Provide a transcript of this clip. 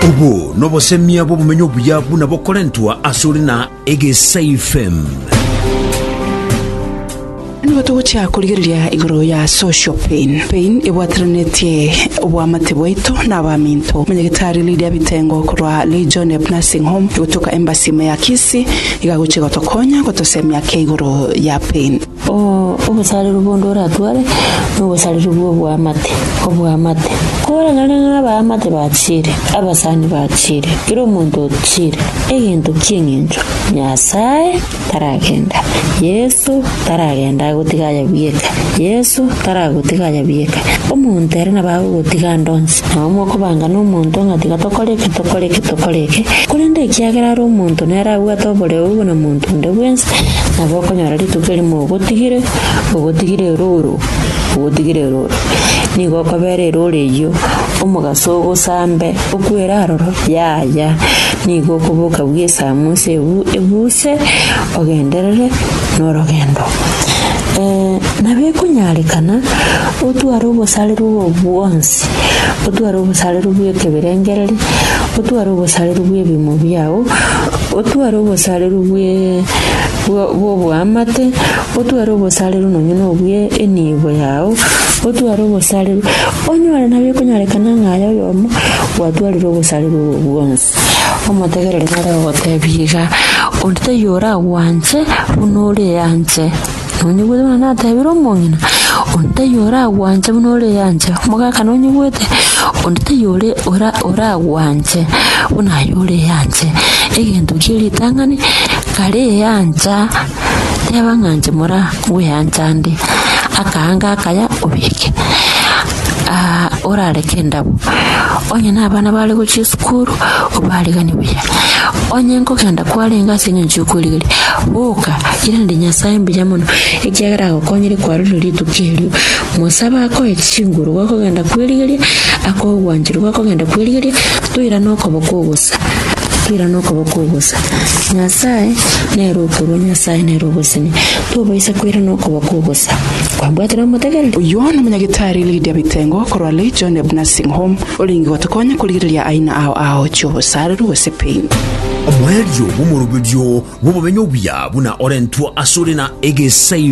Obo nobosemia bw'obomenyo obuya buna bokorentwa asore na Egesaifem. Nigo togochia korigereria igoro ya social pain. Pain ebwateranetie obwamate bwaito na abaminto. Omonyagetari Lydia Bitengo korwa Legion of Nursing Home egotoka Embassy ime ya Kisii iga agochia gotokonya gotosemia ake igoro ya pain. Obosareru bonde oratware nobosareru bw'oboamate, oboamate. Kore nonye na abaamate bachire, abasani bachire, kera omonto ochire, egento ki'eng'encho Nyasaye taragenda, Yeso taragenda agotiga aye bweka, Yeso taragotiga aye bweka. Omonto ere nabo agogotiga ande onsi, nabo mokobanga nomonto ng'a tiga tokore eke, tokore eke, tokore eke, korende ekiagera are omonto nere abwate oboreu buna monto. Onde bwensi nabo okonyora rituko erimo ogotigire, ogotigire erooro, ogotigire erooro. Nigo okobera erooro eyio omogaso ogosambe okwere aroro, yaya. Nigo okoboka bwa esamu ase ebu ebuse ogenderere na orogendo. nabo ekonyarekana otware obosarero obo bwonsi, otware obosarero bwa ekeberengereri, otware obosarero bwa ebimo biago. Otware obosareru bwe bw'oboamate, otware obosareru nonya nobwe enibo yao, otware obosareru onyore nabio ekonyorekana ng'a aye oyomo gwatwarire obosareru obo bwonsi. Omotegereri nare ogotebie iga, Onde taiyo oragwanche buna ore anche. Nonyigwete buna natebire omong'ina, onde taiyo oragwanche buna oreanche, omogaka nonyigwete, onde taiyo ore- ora- oragwanche buna aye oreanche. Egento kie ritang'ani, kareancha, teba ng'a inche mora ngweancha nde, akaanga akaya obeke. aa orareke endabo onye nabana bare gochia esukuru obarigani buya onye nkogenda kwarenge ase engencho yokwerigeria boka ira inde nyasaye mbuya mono ekiagera agokonyire kwarorire rituko erio mosabe akoe chinguru gwakogenda kwerigeria akoe ogwanchero gwakogenda kwerigeria toirane okoboko obosa toirane okoboko obosa nyasaye nere okorua nyasaye nere ogosenia. Tobaisa koirana okoba kw'obosa. Kwabwatire omotegereri? Oyio nomonyagitari Lydia Bitengo korwa Legioneb Nursing Home orenge gotokonya korigereria aina ao ao chi'obosareru gose pain. Omoerio bw'omoroberio bw'obomenyo obuya buna orentwe asore na egesae.